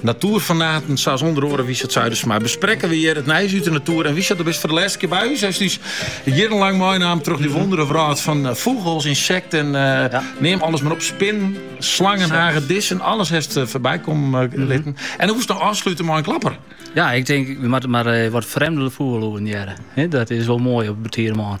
Natoerfanaten sa's ûnder oare Wiesert Zuidersma besprekke we hjir it nijs út de natoer. En Wiesert, do bist foar de lêste kear by ús. Hast ús jierrenlang meinaam troch dy wondere wrâld fan eh, fûgels, insekten, eh, Ja. neam alles mar op, spinnen, slangen, hagedissen, alles hast eh, foarby komme eh, Mhm. litten. En dan woest dan ôfslute mei in klapper. Ja, ik denk, we moatte mar eh, wat frjemde fûgellûden hearre. Hè, dat is wol moai op 'e betide moarn.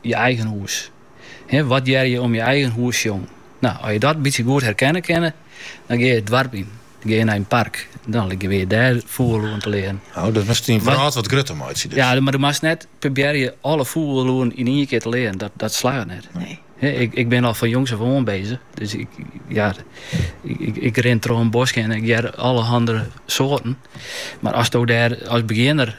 je eigen hûs. Wat hearre je om je eigen hûs sjongen? No, as je dat bytsje goed herkenne kinne, dan gean je it doarp yn. Dan gean je nei in park. Dan like je wer dêr fûgellûden te learen. Oh, dat moatst dyn wrâld wat grutter meitsje dus. Ja, mar dan moatst net probearje alle fûgellûden yn ien kear te learen. Dat, dat slagget net. Nee. Ik, ik bin al fan jongs ôf oan bezich. Dus ik, ja, ik, ik rin troch in bosk en ik hear allerhande soarten. Mar asto dêr as begjinner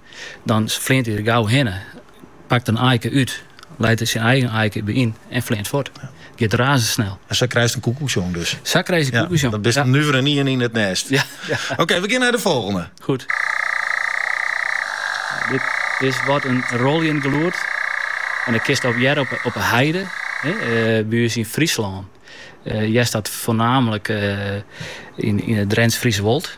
Dan fleant hy der gau hinne, pakt in aike út, leit der syn eigen aike by yn en fleant fuort. It giet razendsnel. En sa krijst in koekoeksjong dus? Sa krijst in koekoeksjong. Dan bist in nuveren ien yn it nêst. Oké, we gean nei de folgjende. Goed. Dit is wat in rôljend gelûd. En dat kinst op hearre op de heide by ús yn Fryslân. Hearst dat foarnamelik yn it Drents-Friese Wold.